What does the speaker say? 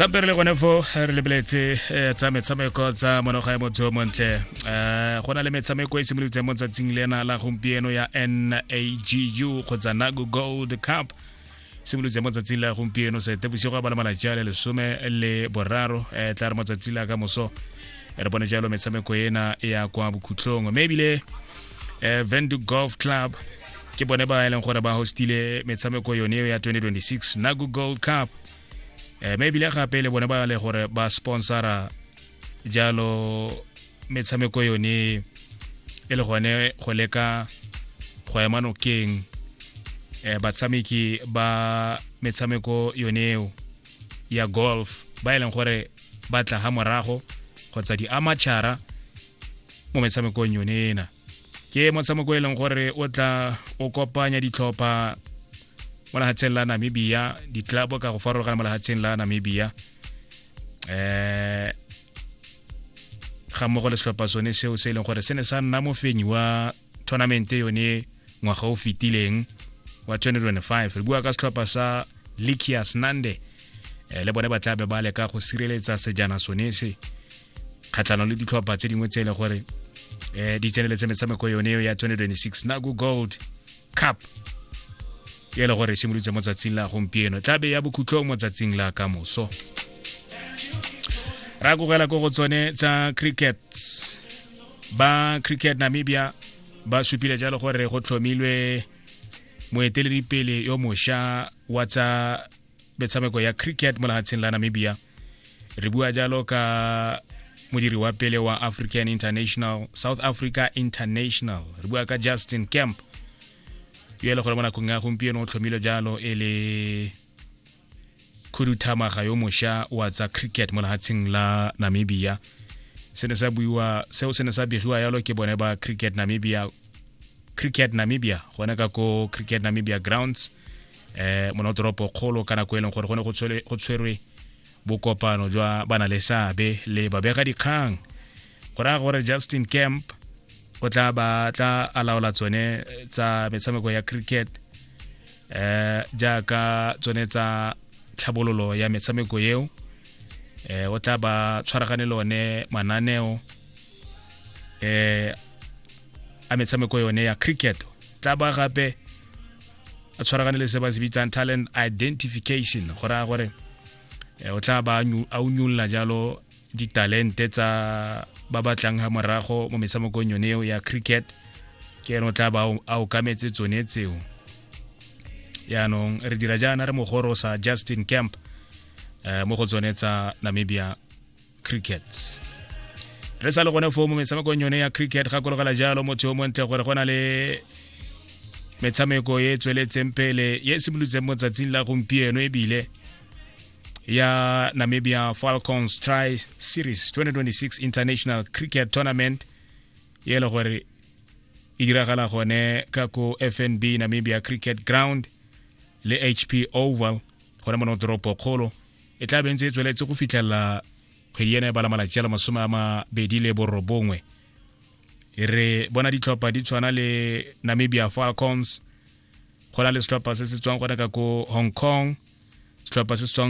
sampere le gone fo re lebeletse eh, tsa metshameko tsa monoga ya motho o montle eh, go na le metshameko e simolotseng mo tsatsing le ena la gompieno ya nagu kgotsa nagu gold cup simolotse mo tsatsing la gompieno sete bosigo a bala malatsi a le lesome le boraro um tla re mo tsatsi la ka moso re bone jalo metshameko ena ya kwa bokhutlong mme ebile um eh, vendu golf club ke bone ba e leng gore ba hostile metshameko yone eo ya 2026 nago gold cup um mme ebile gape le bone ba le gore ba sponsora jalo metshameko yone e le gone go leka go ema nokeng um batshameki ba metshameko yone eo ya golf ba e leng gore ba tla ga morago kgotsa di-amatšhara mo metshamekong yone ena ke motshameko e leng gore o tla o kopanya ditlhopha mo lehatsheng la namibia ditlabo ka go farologana mo lehatsheng la namibia eh ga mmogo le setlhopha sone seo se e leng gore se ne sa nna mofenyi wa tournament yone ngwaga o fetileng wa 2025 re bua ka setlhopha sa likias nande eh, le bone ba tla be ba leka go sireletsa sejana sone se kgatlhano le ditlhopha tse dingwe tse e le gore um di tseneletse metshameko yone eo ya 2026 nago gold cup e le gore e simolotse mo tsatsing la gompieno tla be ya bokhutlong mo tsatsing la ka moso ra kogela ko go tsone tsa cricket ba cricket namibia ba supile jalo gore go tlhomilwe moeteledipele yo mosha wa tsa metshameko ya cricket mo lehatsheng la namibia re bua jalo ka modiri wa pele wa african international south africa international re bua ka justin camp yo e le gore mo nakong ya gompieno o tlhomile jalo e le khuduthamaga yo mosha wa tsa cricket mo lehatsheng la namibia se ne sa buiwa seo se ne sa begiwa yalo ke bone ba cricket namibia cricket namibia gone ka ko cricket namibia grounds eh mo toropo kgolo ka nako e leng gore go ne go tshwerwe bokopano jwa bana le seabe le babega dikgang go raya gore justin camp o tla ba tla alaola tsone tsa metshameko ya cricket eh jaaka tsone tsa tlhabololo ya metshameko eo eh o tla ba tshwaragane le one mananeo eh a metshameko yone ya cricket tla ba gape a tshwaragane le se ba se bitsang talent identification go raya gore eh, o tla ba a unyolola jalo ditalente tsa ba batlang ga morago mo metshamekong yone eo ya cricket ke ene o tla ba a okametse tsone tseo yaanong re dira jaana re mogoro sa justin camp eh, mo go tsone tsa namibia cricket re sa le gone foo mo metshamekong yone ya cricket gakologela jalo motho yo montle gore go na le metshameko e tsweletseng pele e simolotseng mo tsatsing la gompieno ebile ya Namibia Falcons Tri Series 2026 International Cricket Tournament ye le gore e diragala gone ka ko FNB Namibia Cricket Ground le HP Oval gone mono toropo kgolo e tla bentse e tsweletse go fitlhelela kgwedi ena e bala malatsi a le masome a mabedi le borobongwe re bona ditlhopha di tshwana le Namibia Falcons go na le setlhopha se se tswang gone ka ko hong kong setlhopha se se tswang